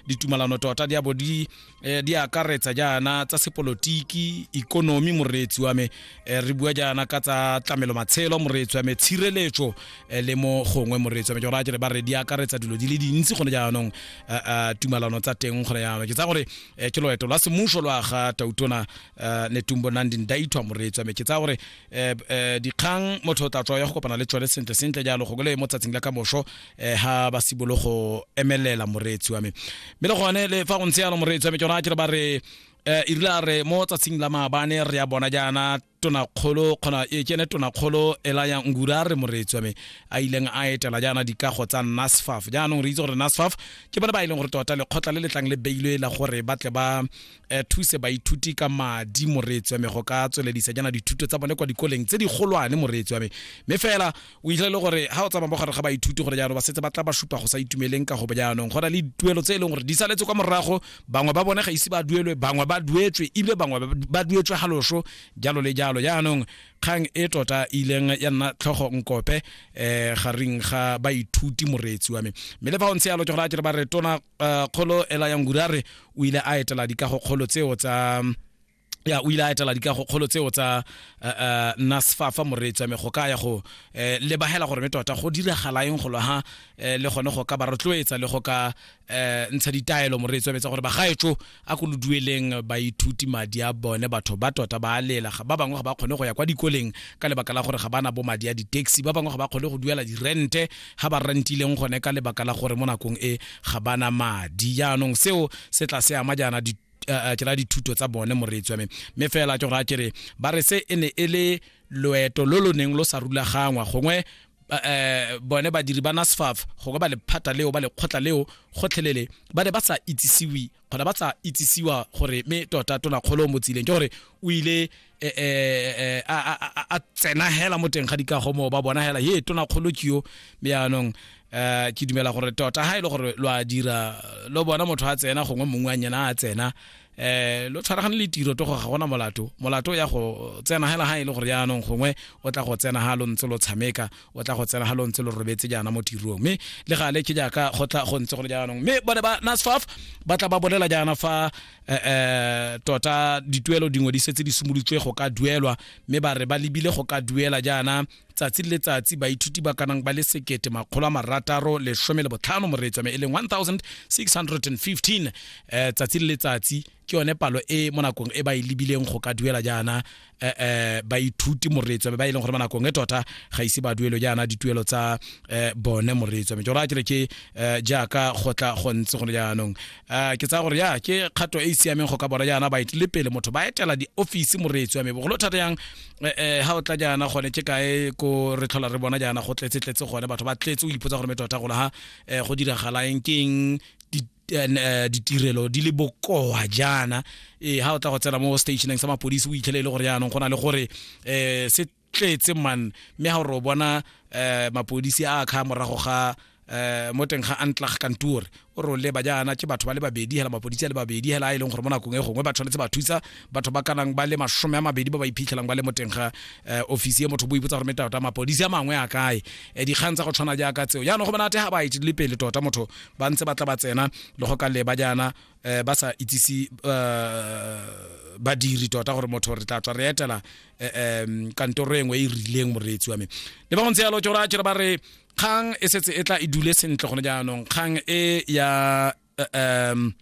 ditumalano tota di abo di eh, di akaretsa jaana tsa sepolotiki ikonomi moreetsi wa me eh, re bua jaana ka tsa tlamelo matshelo moreetsi wa me tshireletso eh, le mo gongwe moreetsi wa me ke gore a jere ba re di akaretsa dilo di le dintsi gone jaanong eh, eh, tumalano tsa teng gone jaanong ke tsa gore eh, ke loeto la semuso lwa ga tautona eh, netumbo nandi ndaithwa moreetsi wa me ke tsa gore eh, eh, dikgang motho o tla tswa ya go kopana le tsone sentle sentle jalo go le mo tsatsing la ka moso eh ha ba sibolo go emelela moreetsi wa me mme le gone le fa go ntse yalo moreetsi wa me ke rona ke re ba re eh e rile re mo tsatsing la maabane re ya bona jaana tonakgolo kgona e kene tonakgolo ela ya ngura re moreetsi wa me a ileng a etela jaana dikago tsa nasfaf jaanong re itse gore nasfaf ke bone ba e leng gore tota lekgotla le letlang le beilwe la gore ba tle ba eh, thuse baithuti ka madi moreetsi wa me go ka tsweledisa jaana dithuto tsa bone kwa dikoleng tse di golwane moreetsi wa me mme fela o itla e le gore ga o tsamaya mo gare ga baithuti gore jaanong ba setse ba tla ba supa go sa itumeleng ka go bo jaanong go na le dituelo tse e leng gore di saletse kwa morago bangwe ba bone ga ise ba duelwe bangwe ba duetswe ebile bangwe ba duetswe ga loso jalo le jalo jaanong kgang e tota e ileng ya nna tlhogo nkope eh gareng ga baithuti moreetsi wa me mme le fa o ntse yalo ke gore a ke re ba re tona eh, kgolo ela yang gurare o ile a etela dikago kgolo tseo tsa ya o ile a etela dikagokgolo tseo tsa uh, eh, eh, nasfa fa moreetsi wa me go ka ya go eh, lebagela gore me tota go diragala eng golo ha le gone go ka ba rotloetsa le go ka ntsha ditaelo moreetsi wa metsa gore bagaetso a ko lo dueleng baithuti madi a bone batho ba tota ba a lela ba bangwe ga ba kgone go ya kwa dikoleng ka lebaka la gore ga ba na bo madi a di-taxi ba bangwe ga ba kgone go duela dirente ga ba rentileng gone ka lebaka la gore mo nakong e ga ba na madi jaanong seo se tla se ama jaana eh, ke ra dithuto tsa bone moreetsi wa me mme fela ke gore a kere ba re se e ne e le loeto lo lo neng lo sa rulagangwa gongwe eh bone badiri ba NASFAF go ba lephata leo ba lekgotla leo gotlhelele ba ne ba sa itsisiwi kgona ba sa itsisiwa gore me tota tona kgolo mo tsileng ke gore o ile eh, eh, eh, a- a a- a tsena hela mo teng ga dikago moo ba bona hela ye tona kgolo ke yo mme yaanong eh, ke dumela gore tota ga e le gore lo a dira lo bona motho a tsena gongwe mongwe a nyena a tsena eh lo tshwaragane le tiro to go ga gona molato molato ya go tsena hela ha e le gore yaanong gongwe o tla go tsena ha lo ntse lo tshameka o tla go tsena ha lo ntse lo robetse jaana mo tirong mme le gale ke jaaka go tla go ntse go le jaanong mme bone ba nasfaf ba tla ba bolela jaana fa eh, eh tota dituelo dingwe di setse di simolotswe go ka duelwa mme ba re ba lebile go ka duela jaana tsatsi le letsatsi baithuti ba kanang ba le sekete makgolo a marataro lesome le botlhano moreetswa me e leng 1615 um eh, tsatsi le letsatsi ke yone palo e mo nakong e ba e lebileng go ka duela jaana eh, eh, baithuti moretswa ba e leng gore ba nakong e tota ga ise ba duelo jaana dituelo tsa eh, bone moretswa me jora kere ke eh, jaaka go tla go ntse gone jaanong eh, ke tsaya gore ya ke kgato e e siameng go ka bona jaana ba itile pele motho ba etela diofisi moretswa me bogolo thata yang eh, eh, ha o tla jaana gone ke kae ko re tlhola re bona jaana go tletse tletse gone batho ba tletse o ipotsa gore me tota gona ha eh, go diragalaeng keng eh, ditirelo di le bokoa jaana e ha o tla go tsena mo stationeng sa mapodisi o itlhele e le gore yaanong go na le gore um se tletse man mme ha o re o bona um mapodisi a kga morago ga eh mo teng ga antlag kantor o ro leba jaana ke batho ba le babedi hela mapodisi a le babedi hela a e leng gore mo nakong e gongwe ba tshwanetse ba thusa batho ba kanang ba le masome a mabedi ba ba iphitlhelang ba le mo teng ga eh, ofisi e motho bo ipotsa gore metata mapodisi a mangwe a kae eh, dikgang tsa go tshwana jaaka tseo jaanong go monate ga ba itse le pele tota motho ba ntse ba tla ba tsena le go ka leba jaana um ba sa itsise eh, badiri tota gore motho re tla tswa re etela um kantoro engwe e, e rileng moreetsi wa me le ba go ntse yalo tsora tsere ba re kgang e setse e tla e dule sentle gone jaanong kgang e ya um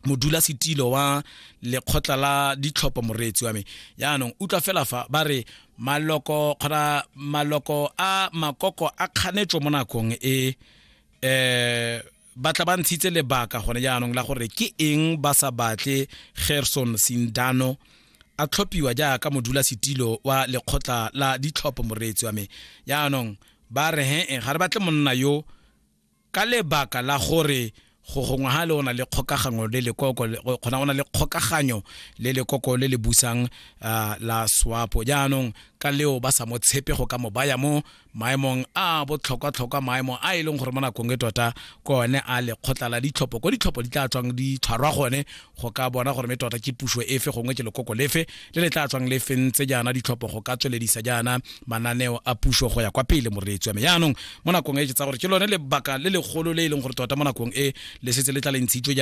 modula setilo wa lekgotla la ditlhopho moreetsi wa me yaanong utlwa fela fa ba re maloko kgona maloko a makoko a kganetso mo nakong e eh batla ba ntshitse lebaka gone jaanong la gore ke eng ba sa batle gerson sindano a tlhophiwa jaaka modula setilo wa lekgotla la ditlhopho moreetsi wa me jaanong ba re he ga re batle monna yo Ka lebaka la gore go gongwe ha le o na le kgokaganyo le lekoko kgona o na le kgokaganyo le lekoko le le busang uh, la swapo jaanong ka leo ba sa mo tshepe go ka mo baya mo maemong a botlhokwa-tlhokwa maemo a e leng gore mo nakong e tota ko one a lekgotla la ditlhopho ko ditlhopho di tla tswang di tshwarwa gone go ka bona gore me tota ke puso efe gongwe ke lekoko lefe le le tla tswang le fentse jaana ditlhopho go ka tsweledisa jaana mananeo a puso go ya kwa pele moreetsi wa me jaanong mo nakong e ke tsa gore ke lone lebaka le legolo le e leng gore tota mo nakong e le setse le tla le ntshitswe jaana